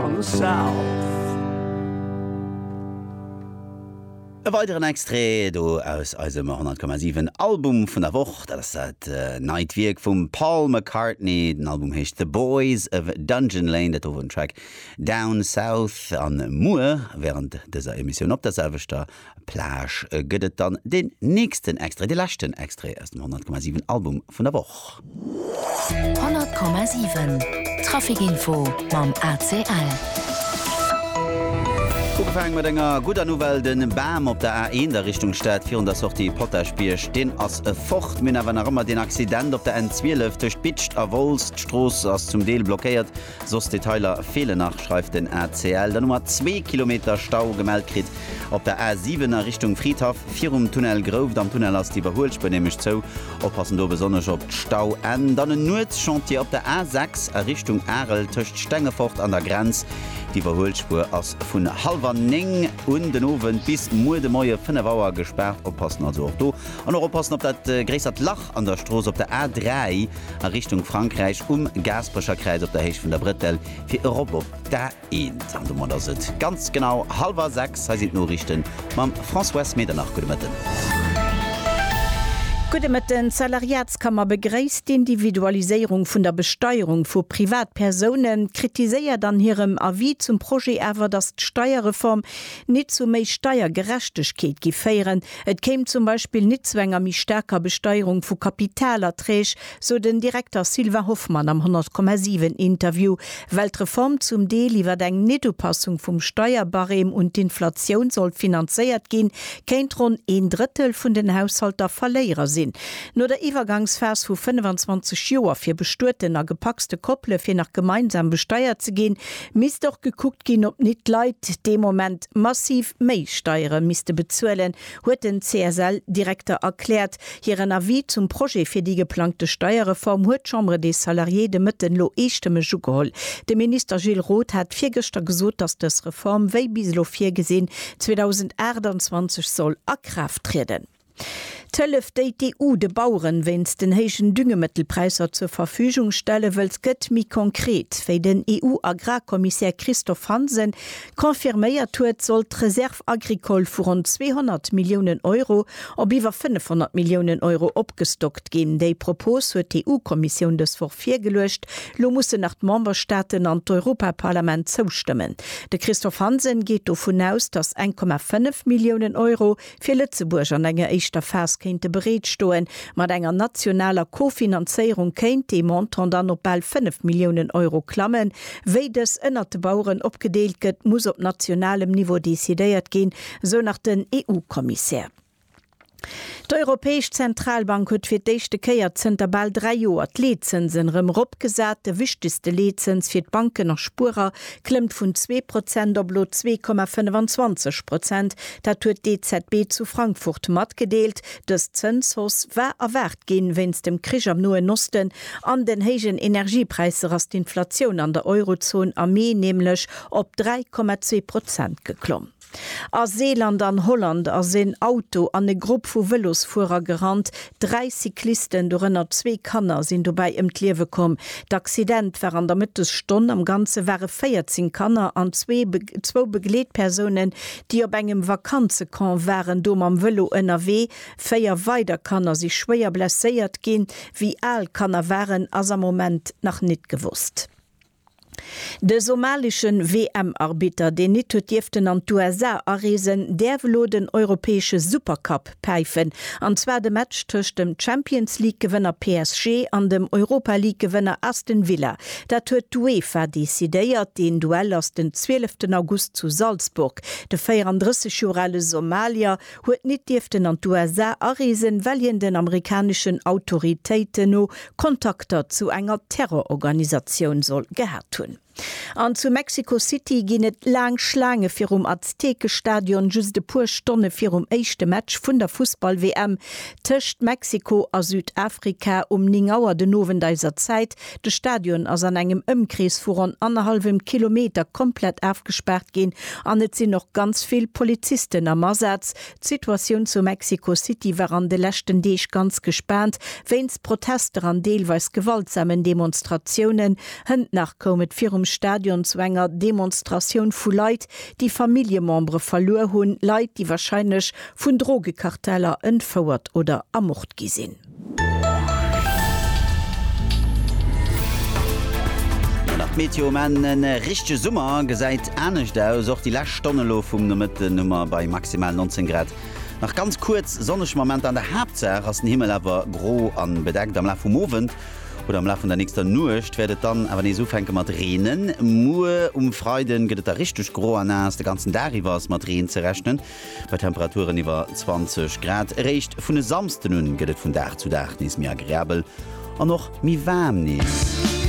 on the south. E weideren Extrait do aus eisem 100,7 Album vun der Woch, dat ass dat neit Wierk vum Paul McCartney. Den Album heescht The Boys of Dungeon Lane, dat do wor den Track Down South. A muer wärend dëser Emissioun op der selwechter Plage gëtt et dann den nächsten Extrait, de leschten Extrait aus dem 100,7 Album vun der Woch. 100,7 Trafic Info mam ACL. Ugefaange mat enger gudder Nouvelle, de Bam op der A1 a Richtung Stad virun der Sortie Potaschbierg, deen ass fort. Mir hunn awer nach ëmmer deen Accident op der N12 tëscht Bitscht a Wolz. D'Strooss ass zum Deel blockéiert. Soss Detailer feelen nach, schreift den ACL. Dann hu mer zwee Kilometer Stau gemellt kritt op der A 7 a Richtung Fridhaff, virum Tunnel Grouft. Am Tunnel ass d'Iwwerhuelspuer nämlech zou. Oppassen do besonnesch op d'Stauenn. Dann en Nuetschantier op der A 6 a Richtung Arel tëscht Stengefort an der Grenz. D'Iwwerhuelspuer ass vun hallwer néng un den Owend bis muer de Moie fënnef Auer gespaart. Oppassen also och do. An och oppassen op dat gréissert Lach. An der Strooss op der A3 a Richtung Frankräich um Gaasperecher Kräiz op der Héicht vun der Brëttel fir erop op d'A1. An domat ass et ganz genau hallwer 6. Hei sinn d'Noriichte mam Françoise Medernach. Gudde Mëtten. Gudde Mëtten. D'Salariatskammer begréisst d'Individualiséierung vun der Besteierung vu Privatpersounen, kritiséiert an hirem Avis zum Projet awer, datt d'Steierreform nit zu méi Steiergerechtegkeet gi féieren, Et kéim zum Beispill nit zu enger méi staarker Besteierung vu Kapitalerträg, sou den Direkter Sylvain Hoffmann am 100,7 Interview, well d'Reform zum Deel iwwer eng Nitupassung vum Steierbarème un d'Inflatioun sollt finanzéiert ginn, kéint ronn een Drëttel vun den Haushalter Verléierer sinn. No der Iwwergangsphas vu 25 Joer fir bestueten a gepacste Koppele fir nach gemeinsam besteiert ze ginn, misst och gekuckt ginn, ob nit d'Leit dee Moment, massiv méi Steiere misste bezuelen, huet den CSL-Direkter erkläert. Hiren Avis zum Projet fir déi geplangte Steierreform huet d'Chambre des Salariés de Mëtten elo eestëmmeg ugeholl. De Minister Gilles Roth hat virgëschter gesot, datt dës Reform, wéi bis elo virgesinn, 2028 soll a Kraaft trieden. D'Hëllef, déi d'EU de Baueren wéinst den héijen Düngemëttelpräisser zur Verfügung stelle wëllt, gëtt méi konkret. Wéi den EU-Agrarkommissär Christophe Hansen confirméiert huet, soll d'Reserve agricole vu ronn 200 Milliounen Euro op iwwer 500 Milliounen Euro opgestockt ginn. Déi Propos huet d'EU-Kommissioun dës Woch virgeluecht. Lo mussen nach d'Memberstaaten an d'Europaparlament zoustëmmen. De Christophe Hansen geet dovun aus, datt 1,5 Milliounen Euro fir Lëtzebuerg an enger éischter Phas kéinte bereet stoen. Mat enger nationaler Kofinanzéierung kéint dee Montant dann op bal 5 Milliounen Euro klammen. Wéi dës ënnert de Baueren opgedeelt gëtt, muss op nationalem Niveau decidéiert ginn, sou nach den EU-Kommissär. D'Europäesch Zentralbank huet fir d'éischte Kéier zënter bal dräi Joer d'Leetzënsen erëm eropgesat. De wichtegste Leetzëns fir d'Banken a Spuerer klëmmt vun zwee Prozent op elo zwee Komma 25 Prozent. Dat huet d'EZB zu Frankfurt matgedeelt. Dës Zënshausse war erwaart ginn. Wéinst dem Krich am Noen Osten an den héijen Energiepräisser ass d'Inflatioun an der Eurozon am Mee nämlech op 3,2 Prozent geklomm. A Seeland an Holland ass en Auto an e Grupp vu Vëlosfuerer gerannt. Dräi Cyclisten, dorënner zwee Kanner, sinn dobäi ëm d'Liewe komm. D'Accident war an der Mëttesstonn. Am Ganze ware 14 Kanner an zwee zwou Begleetpersounen, déi op engem Vakanzecamp waren, do mam Vëlo ënnerwee. Véier weider Kanner si schwéier blesséiert ginn. Wéi al d'Kanner waren, ass am Moment nach nit gewosst. De somalesche WM-Arbitter, deen nit huet dierften an d'USA areesen, däerf elo den europäesche Supercup päifen, an zwar de Match tëscht dem Champions-League-Gewënner PSG an dem Europa-League-Gewënner Aston Villa. Dat huet d'UEFA decidéiert. Deen Duell ass den 12 August zu Salzburg. De 34 Joer ale Somalier huet nit dierften an d'USA areesen, well hien den amerikaneschen Autoritéiten no Kontakter zu enger Terrororganisatioun soll gehat hunn. An zu Mexico City ginn et laang Schlaange virum Aztekestadion, just e puer Stonne virum éischte Match vun der Fussball-WM tëscht Mexiko a Südafrika um 9 Auer den Owend eiser Zäit, De Stadion ass an engem Ëmkrees vu ronn annerhallwem Kilometer komplett afgespaart ginn an et sinn och ganz vill Polizisten am Asaz. D'Situatioun zu Mexico City war an de leschten Deeg ganz gespaant, wéinst Protester an deelweis gewaltsamen Demonstratiounen. Hënt nach koum et virum Stadion zu enger Demonstratioun vu Leit, déi Familljemembere verluer hunn, Leit, déi warscheinlech vun Drogekarteller entfouert oder ermort gi sinn. Nach d'Meteo um Enn, e richtege Summer gesäit anescht aus. Och déi lescht Stonn elo vum Nomëtten hu mer bei maximal 19 Grad nach ganz kuerz sonneg Momenter. An der Haaptsaach ass den Himmel awer gro a bedeckt. Am Laf vum Owend oder am Laf vun der nächster Nuecht wäert et dann awer nees ufänke mat reenen. Muer um Freide gëtt et da richteg gro a naass. De ganzen Dag iwwer ass mat Reen ze rechnen. Bei Temperaturen iwwer 20 Grad. Eréischt vun e Samsden un gëtt et vun Dag zu Dag nees méi agreabel an och méi waarm nees.